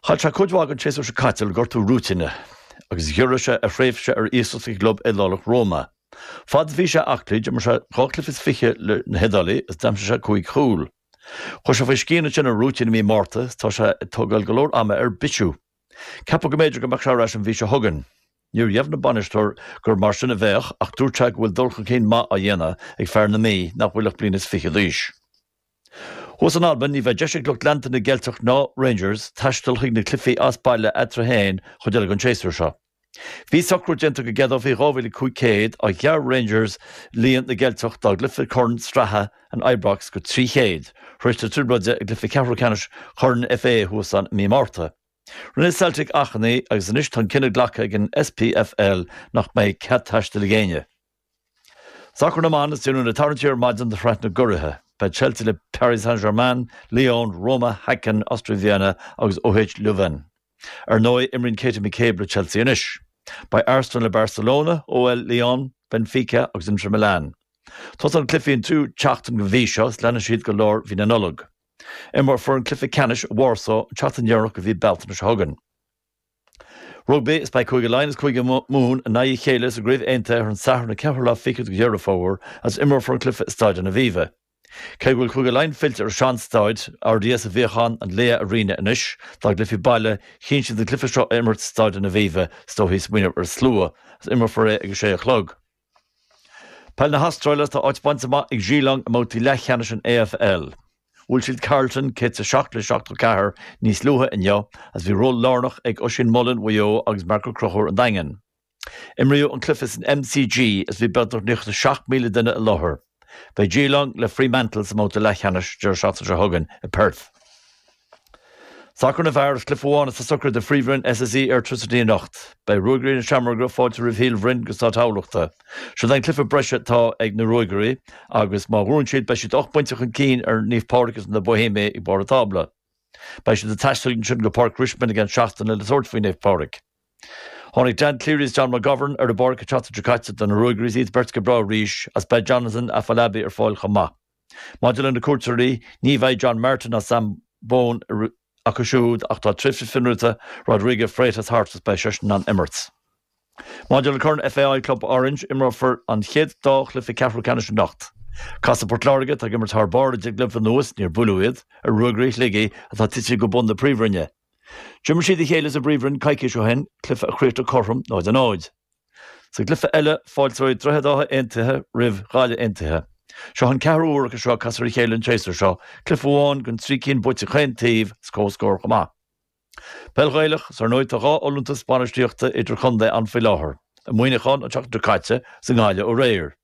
Chaill sé cuid mhaith den tséasúr seo caite le gortú rúitín, agus ghiorraigh sé a thréimhse ar iasacht i gclub Iodálach Roma. Fad is bhí sé aclaí, d'imir sé dhá cluiche is fiche leis na hIodálaigh agus d'aimsigh sé cúig chúl. Chuaigh sé faoi scian ansin ar a rúitín i mí Márta, is tá sé ag tógáil go leor ama ar bisiú. Ceapadh go mb'fhéidir go mbeadh sé ar ais an mhí seo chugainn. Níor dheimhnigh an bainisteoir gur mar sin a bheadh, ach dúirt sé go bhfuil dul chun cinn maith á dhéanamh ag fear na Mí nach bhfuil ach bliain is fiche d'aois. Thuas in Albain ní bheidh deis ag lucht leanta na gCeilteach ná Rangers taisteal chuig na cluichí as baile eatarthu féin go deireadh an tséasúir seo. Bhí socrú déanta go gceadófaí 2,500 ach ghearr Rangers líon na gCeilteach dá gcluiche Corn Sraithe in Ibrox go 300. Tar éis na trioblóide i gcluiche ceathrú ceannais Chorn FA thuas ann i mí Márta. Rinne Celtic achainí agus anois tá an cinneadh glactha ag an SPFL nach mbeidh cead taistil ag éinne. Sacar na mBan, Is déanadh an tarraingt ar maidin do shraith na gCuraithe. Beidh Chelsea le Paris Saint-Germain, Lyon, Roma, Häcken, Austria Vienna agus OH Leuven. Ar ndóigh, imríonn Katie McCabe le Chelsea anois. Beidh Arsenal le Barcelona, OL Lyon, Benfica agus Inter Milan. Tosaíonn na cluichí an tríú tseachtain den mhí seo is leanfaidh siad go lár mhí na Nollag. Imreofar an cluiche ceannais i Warsaw an tseachtain dheireanach de mhí Bealtaine seo chugainn. Rugbaí, Is beidh Cúige Laighean agus Cúige Mumhan in aghaidh a chéile sa gCraobh Aontaithe ar an Satharn an 4ú lá fichead de Dheireadh Fómhair agus imreofar an cluiche i Stáid an Aviva. Cé go bhfuil Cúige Laighean fillte ar a sean-stáid, RDS a bhíodh ann an Laya Arena anois, dá gcluichí baile, chinn siad an cluiche seo a imirt i Stáid an Aviva, is dóichí, ag smaoineamh ar an slua, agus imreofar é ag a sé a chlog. Peil na hAstráile, Tá áit bainte amach ag Geelong i mbabhtaí leathcheannais an AFL. Bhuail siad Carlton 107 le 74 níos luaithe inniu agus bhí ról lárnach ag Oisín Mullin Mhaigh Eo agus Mark Ó Conchúir an Daingin. Imríodh an cluiche san MCG agus bhí beagnach 97,000 duine i láthair. Beidh Geelong le Fremantle sa mbabhta leathcheannais deireadh seachtaine seo chugainn i Perth. Sacar na bhfear, Is cluiche amháin atá socraithe do Phríomhroinn SSE Airtricity anocht. Cuirfidh Ruagairí na Seamróige fáilte roimh Shíol Bhroin go Stáid Thamhlachta. Siod an cluiche breise atá ag na Ruagairí agus má bhuann siad beidh siad ocht bpoinnte chun cinn ar Naomh Pádraig agus na Boihéamaigh ag barr an tábla. Beidh siad ag taisteal ansin go Páirc Richmond i gceann seachtaine le tabhairt faoi Naomh Pádraig. Tháinig Dan Cleary is John McGovern ar an bpáirc an tseachtain seo caite do na Ruagairí is iad beirt go breá arís is beidh Jonathan Afolabi ar fáil chomh maith. Maidir le na cuairteoirí, ní bheidh John Martin ná Sam Bone acu siúd ach tá tréimhse fionraíochta Rodrigo Freitas thart is beidh seisean in ann imirt. Maidir le Corn FAI Club Orange, imreofar an chéad dá chluiche ceathrú ceannais anocht. Casfaidh Port Láirge, atá ag imirt thar barr le deich gcluiche anuas, níor buaileadh iad, ar Ruagairí Shligigh, atá tite go bun na Príomhroinne. D'imir siad a chéile sa bPríomhroinn coicís ó shin, cluiche a chríochnaigh cothrom 0 a 0. Sa gcluiche eile, fáilteoidh Droichead Átha Aontaithe roimh Ghaillimh Aontaithe. Seo an ceathrú huair acu seo ag casadh ar a chéile an séasúr seo, cluiche amháin den trí cinn buaite ag chaon taobh, is comhscór chomh maith. Peil Ghaelach, Is ar ndóigh tá dhá fholúntas bainistíochta idir-chontae ann faoi láthair, i Muineachán an tseachtain seo caite, is i nGaillimh aréir.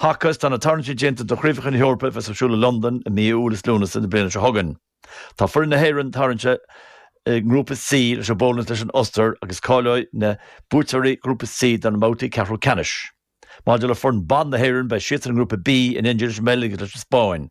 Haca, is tá na tarraingtí déanta do Chraobhacha na hEorpa a bheas ar siúl i Londain i mí Iúil is Lúnasa na bliana seo chugainn. Tá foireann na hÉireann tarraingthe i nGrúpa C leis an bPólainn is leis an Ostair agus cáileoidh na buaiteoirí Ghrúpa C do na mbabhtaí ceathrú ceannais. Maidir le foireann ban na hÉireann beidh siadsan i nGrúpa B in éindí leis an mBeilg is leis an Spáinn.